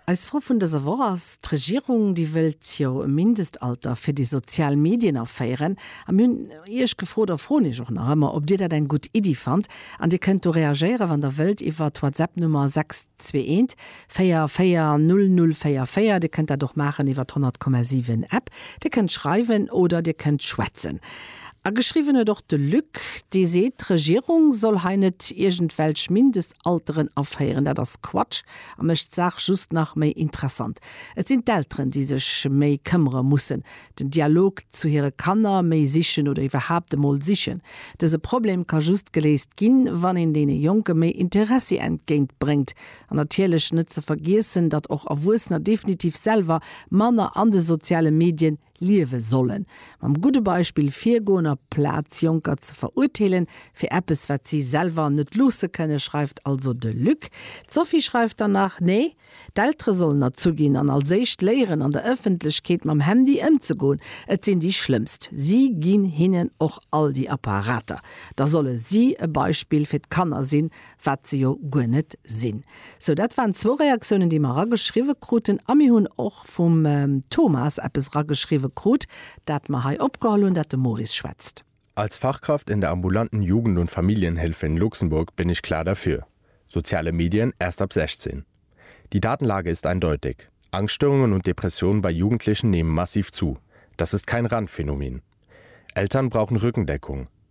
Eis Fro vun dëser Woch ass, D'Regierung, déi wëllt jo e Mindestalter fir déi sozial Medien aféieren. A mir hunn Iech gefrot a froen Iech och nach ëmmer, ob Dir dat eng gutt Iddi fannt. An Dir kënnt do reagéieren, wann Der wëllt, iwwer d'Whatsapp-Nummer 621440044. Dir kënnt dat och maachen iwwer d'100,7 App. Dir kënnt schreiwen oder Dir kënnt schwätzen. A geschriwwen huet och de Luc, dee seet, d'Regierung soll hei net iergendwelch Mindestalteren aféieren. Dat ass Quatsch a mécht d'Saach just nach méi interessant. Et sinn d'Elteren, déi sech méi këmmere mussen, den Dialog zu hire Kanner méi sichen oder iwwerhaapt emol sichen. Dëse Problem ka just geléist ginn, wann een deene Jonke méi Interessi entgéint bréngt. An natierlech net ze vergiessen, datt och Erwuessener definitiv selwer manner an de soziale Medien liewe sollen, mam gudde Beispill virgoen a Plaz Jonker ze verurteelen fir eppes wat si selwer net loosse kënnen, schreift also de Luc. D'Sophie schreift dann nach, Nee, d'Eltere sollen erzu ginn an als éischt léieren an der Ëffentlechkeet mam Handy ëmzegoen. Et sinn déi schlëmmst, si ginn hinnen och all déi Apparater. Da solle si e Beispill fir d'Kanner sinn wat se jo guer net sinn. Sou, dat waren zwou Reaktiounen, déi mer erageschriwwe kruten. A mir hunn och vum Thomas eppes erageschriwwe krut, dat mer hei opgeholl hunn, dat de Maurice schwätzt. Als Fachkraft in der ambulanten Jugend und Familienhilfe in Luxemburg bin ich klar dafür, soziale Medien erst ab 16. Die Datenlage ist eindeutig, Angststörungen und Depressionen bei Jugendlichen nehmen massiv zu, das ist kein Randphänomen. Eltern brauchen Rückendeckung,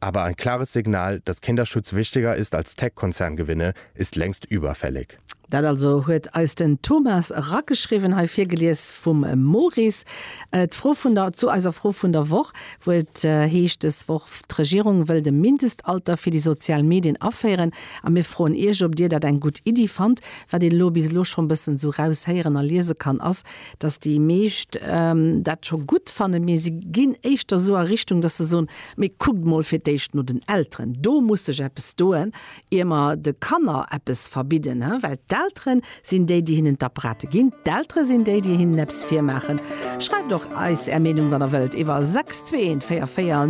aber ein klares Signal, dass Kinderschutz wichtiger ist als Tech-Konzerngewinne, ist längst überfällig. Dat also huet eis den Thomas rageschriwwen, hei virgelies vum Maurice. D'Fro vun der, zu eiser Fro vun der Woch, wou et heescht des Woch, D'Regierung wëllt e Mindestalter fir déi sozial Medien aféieren a mir froen Iech, ob Dir dat eng gutt Iddi fannt. Wat een elo bis elo scho e bëssen esou raushéieren a liese kann, ass, dass déi meescht dat scho gutt fannen, mee se ginn éischter esou a Richtung, dass se soen, mee kuckt emol fir d'éischt no den Elteren, do muss sech eppes doen, ier mer de Kanner eppes verbidden, well d'Eltere sinn déi, déi hinnen d'Apparate ginn, d'Eltere sinn déi, déi hinnen eppes virmaachen. Schreift och eis Är Meenung, wann Der wëllt, iwwer 62144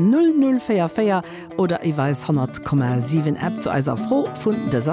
004 44 oder iwwer eis 100,7 App zu eiser Fro vun dëser.